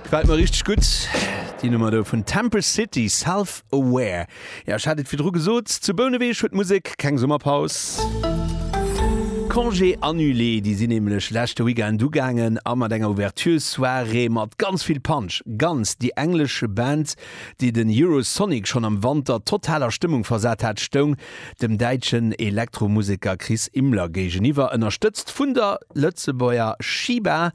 Gefällt mer richteg gutt déi Nummer do vun Temple City, Self Aware. Jo ech hat et virdru gesot, zu Bouneweg huet d'Musek keng Summerpaus. Congés annulés, déi sinn nämlech leschte Weekend ugaangen a mat enger Ouverture Soirée mat ganz vill Punch, Guns, déi englesch Band déi den Eurosonic schonn am Wanter total a Stëmmung versat hat, stoung dem däitschen Elektromuseker Chris Imler géigeniwwer, ënnerstëtzt vun der Lëtzebuerger Shiba.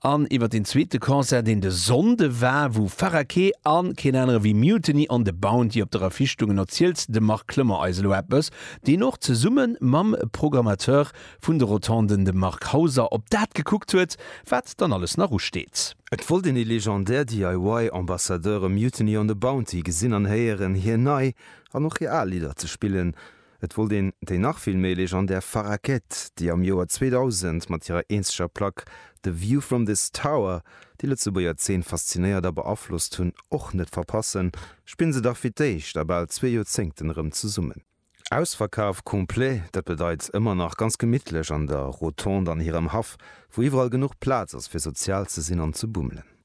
An iwwer deen zweete Concert, deen de Sonnde war, wou Farah Kee a keen anere wéi Mutiny on the Bounty op der Affiche stoungen, erzielt de Marc Clement eis elo eppes, deen och zesumme mam Programmateur vun de Rotonden, dem Marc Hauser, op dat gekuckt huet, wat dann alles nach usteet. Et wollt een ee legendär DIY-Ambassadeur, e Mutiny on the Bounty, gesinn an héieren, hir nei an och hir al Lidder ze spillen. Et wollt een déi nach vill méi legendär Farrah Gedd, déi am Joer 2000 mat hirer eenzeger Plack The View From This Tower déi Lëtzebuerger Zeen faszinéiert a beaflosst hunn, och net verpassen, spille se dach fir d'éischt a bal zwee Joerzéngten erëm zesummen. Ausverkaf complet, dat bedeit ëmmer nach ganz gemittlech an der Rotonde an hirem Haff, wou iwwerall genuch Plaz ass fir sozial ze sinn an ze bummelen.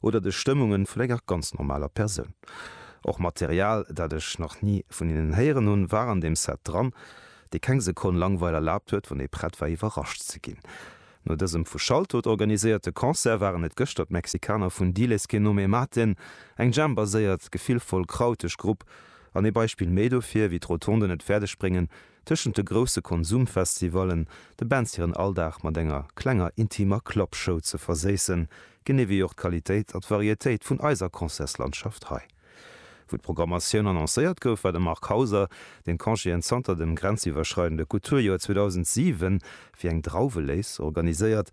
Oder de Stëmmungen vun enger ganz normaler Persoun. Och Material, dat ech nach ni vun hinnen héieren hunn, war an deem Set dran, dee keng Sekonn Langweil erlaabt huet, wann ee prett war iwwerrascht ze ginn. No dësem vu Shaltut organiséierte Concert waren et gëschter d'Mexikaner vun Diles que no me maten, eng Jam-baséiert, gefillvoll, krauteg Grupp an ee Beispill méi dofir, wéi d'Rotonden et fäerdeg bréngen, Tëschent de grousse Konsumfestivallen de Bands hiren Alldag mat enger klenger intimer Clubshow ze verséissen, genee wéi och d'Qualitéit a d'Varietéit vun eiser Concertslandschaft hei. Wou d'Programmatioun annoncéiert gouf, war de Marc Hauser, deen Congéen zanter dem grenziwwerschreidende Kulturjoer 2007 wéi eng Drauwelés organiséiert,